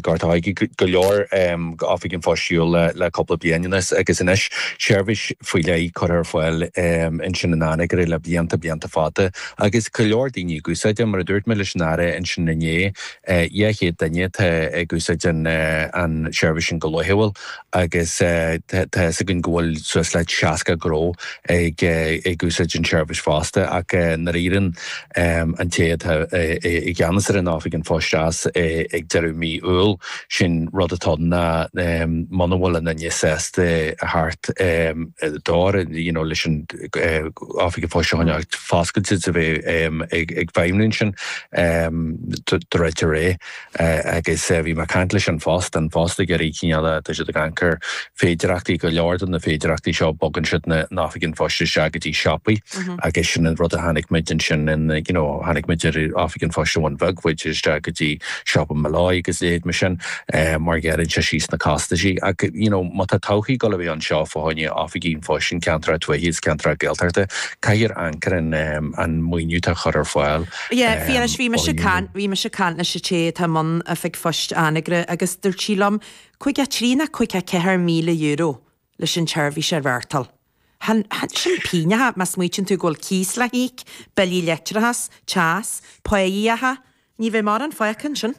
Gort an Choirce, go leor Oifig an Phoist ar shiúl le cúpla bliain anuas agus anois seirbhís faoi leith curtha ar fáil ansin in Anagaire le blianta, blianta fada agus go leor daoine ag úsáid é. Mar a dúirt mé leis an Aire ansin inné, 200 duine atá ag úsáid an tseirbhís sin go laethúil. agus tá fhios againn go bhfuil suas le 60 gnó ag úsáid an tseirbhís fosta, ach nuair a éiríonn an té atá i gceannas ar an Oifig an Phoist as ag deireadh mí Iúil, sin rud atá ann ná muna bhfuil aon duine sásta a thabhairt d'ór you know leis an Oifig an Phoist a choinneáil foscailte is a bheith ag feidhmniú ansin, druidfear é. agus bhí mé ag caint leis an phost, an post ag iarraidh cineál a, tá siad ag amharc ar féidearthachtaí, go leor de na féidearthachtaí seo bogann siad na hOifigí an Phoist isteach go dtí siopaí agus sin an rud a chonaic muid ansin in, you know, chonaic muid Oifig an Phoist i Bhun Bheag, chuaigh siad isteach go dtí siopa Molloy agus a leithéid mar sin mar gearrann sé síos na costaisí ach, you know, má tá todhchaí ag dul a bheith anseo fá choinne Oifigí an Phoist in ceantracha tuaithe agus ceantracha Gaeltachta, caithfear amharc ar an, an maoiniú atá á chur ar fáil. Yeah, a Phiarais, bhí mise ag caint, bhí mise ag caint leis an té atá i mbun oifig phoist Anagaire agus dúirt sí liom, 53 nó 54 míle euro leis an tseirbhís a reáchtáil. Chan, chan, sin pínneacha má smaoitíonn tú go bhfuil cíos le híoc, billí leictreachas, teas, pá a íoc, ní bheidh mórán fágtha ansin.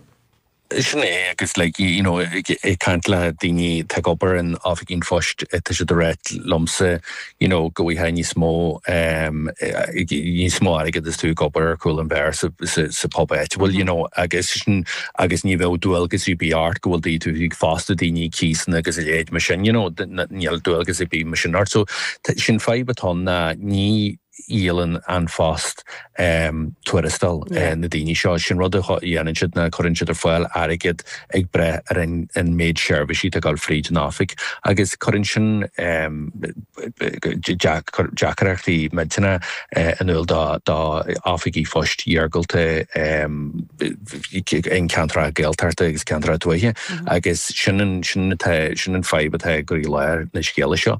Sin é agus like you know ag caint le daoine atá ag obair in Oifigí an Phoist tá siad ag rá liomsa you know go bhfaighfeá níos mó ehm níos mó airgead is tú ag obair ar chúl an bheáir sa sa pub áitiúil you know agus sin agus ní bheadh dualgas ar bith ort go bhfuil daoine tú ag fostú daoine cíosanna agus a leithéid mar sin you know níl dualgas ar bith mar sin ort so sin fadhb atá ann ná ní dhíolann An Phost tuarastal na daoine seo. Sin rud a dhéanann siad ná cuireann siad ar fáil airgead ag brath ar an an méid seirbhísí atá ag gabháil fríd an oifig agus cuireann sin deacaireachtaí muidne in iúl dá dá oifigí phoist iargúlta in ceantracha Gaeltachta agus ceantracha tuaithe agus sin an sin atá sin an fadhb atá i gcroílár na scéala seo.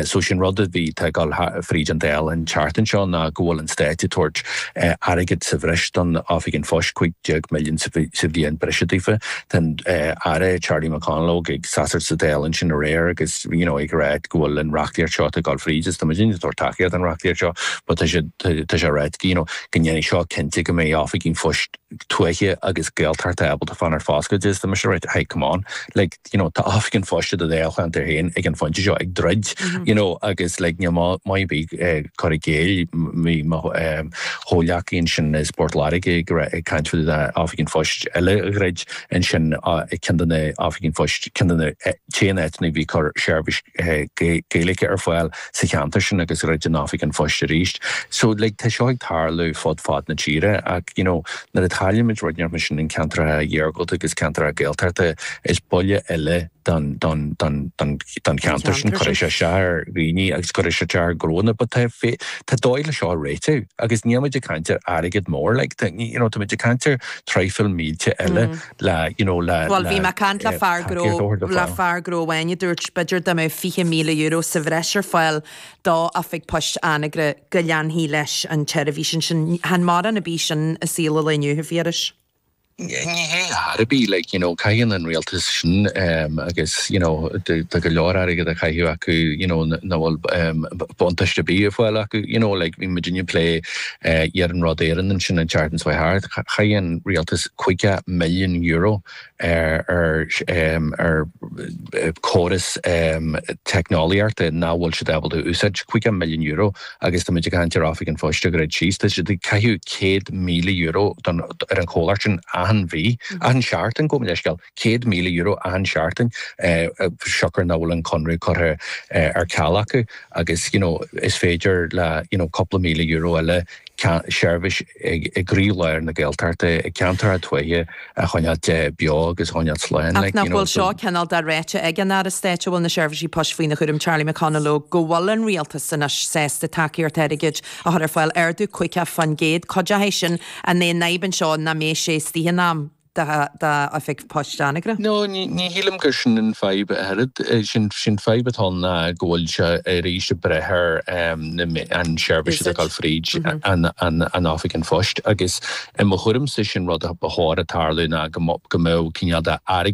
So sin rud a bhí tá ag dul fríd an Dáil an tseachtain seo ná go bhfuil an Stát ag tabhairt airgead sa bhreis don Oifig an Phoist, 15 milliún sa bhliain breise daofa. Tá an Aire Charlie McConalogue ag seasacht sa Dáil ansin aréir agus you know ag rá go bhfuil an reachtaíocht seo atá ag dul fríd is tá muidinne ag tabhairt tacaíocht don reachtaíocht seo but tá siad tá sé ráite, you know, go ndéanfaidh seo cinnte go mbeidh oifigí poist tuaithe agus Gaeltachta ábalta fan ar foscailt is, tá mise ag ráit, hey, come on, like, you know, tá Oifig an Phoist i do Dháilcheantar féin ag an phointe seo ag druid, you know, agus, like, you know, maybe eh, cur i gcéill, bhí mo eh, chomhleacaí ansin as Port Láirge ag ra- ag caint faoi na Oifig an Phoist eile a dhruid ansin, ah, ceann de na Oifig an Phoist, ceann de na eh, t-aon áiteanna a bhí ag cur seirbhís Gaeilge ar fáil sa cheantar sin agus dhruid an Oifig an Phoist arís. So like tá seo ag tarlú fud fad na tíre ach you know nuair a chaillimid rud inteacht mar sin in ceantracha iargúlta agus ceantracha Gaeltachta is buille eile don don don don don cheantar sin cuirfidh sé isteach ar dhaoine agus cuirfidh sé isteach ar ghnónna but tá fé tá dóigh le seo a réiteach agus níl muid ag caint ar airgead mór like tá you know tá muid ag caint ar traidhfil mílte eile Bhuel, bhí mé ag caint le fear gnó, le fear gnó amháin a dúirt, b'fhéidir dá mbeadh €20,000 sa bhreis ar fáil dá oifig poist Anagaire, go leanfaí leis an tseirbhís ansin. Chan mórán ar bith sin i saol an lae inniu, a Phiarais. Ní hea chor ar bith, like, you know, caitheann an Rialtas sin agus, you know, tá go leor airgead á chaitheamh acu, you know, nach bhfuil buntáiste ar bith ar fáil acu, you know, like, bhí muidinne ag plé, Iarnród Éireann ansin an tseachtain seo thart. Chaith an rialtas €50 milliún ar chóras teicneolaíochta nach bhfuil siad ábalta a úsáid. €50 milliún agus tá muid ag caint ar Oifig an Phoist a dhruid síos. Tá siad ag caitheamh €100,000 ar an chomhlacht sin achan mhí, achan seachtain, gabh mo leithscéal. €100,000 achan seachtain siocair nach bhfuil an conradh curtha ar ceal acu agus you know is féidir le you know cúpla míle euro eile seirbhís i gcroí lár na Gaeltachta i gceantracha tuaithe a choinneáilt beo agus a choinneáilt slán. Ach nach bhfuil seo cineál de ráite ag an Aire Stáit a bhfuil na seirbhísí poist faoina chúram, Charlie McConalogue, go bhfuil an Rialtas anois sásta tacaíocht airgid a chur ar fáil, ardú 50% cuid de sin, an é an fhadhb anseo nach mbeidh sé istigh in am? dá Oifig Poist Anagaire. No, ní shílim gur sin an fadhb a oiread. Sé'n fadhb atá ann ná go bhfuil sé arís ag brath ar na, an seirbhís atá ag gabháil fríd an Oifig an Phoist agus i mo thuairimse sé'n rud ba chóir a tarlú ná go mbeadh cineál de airgead,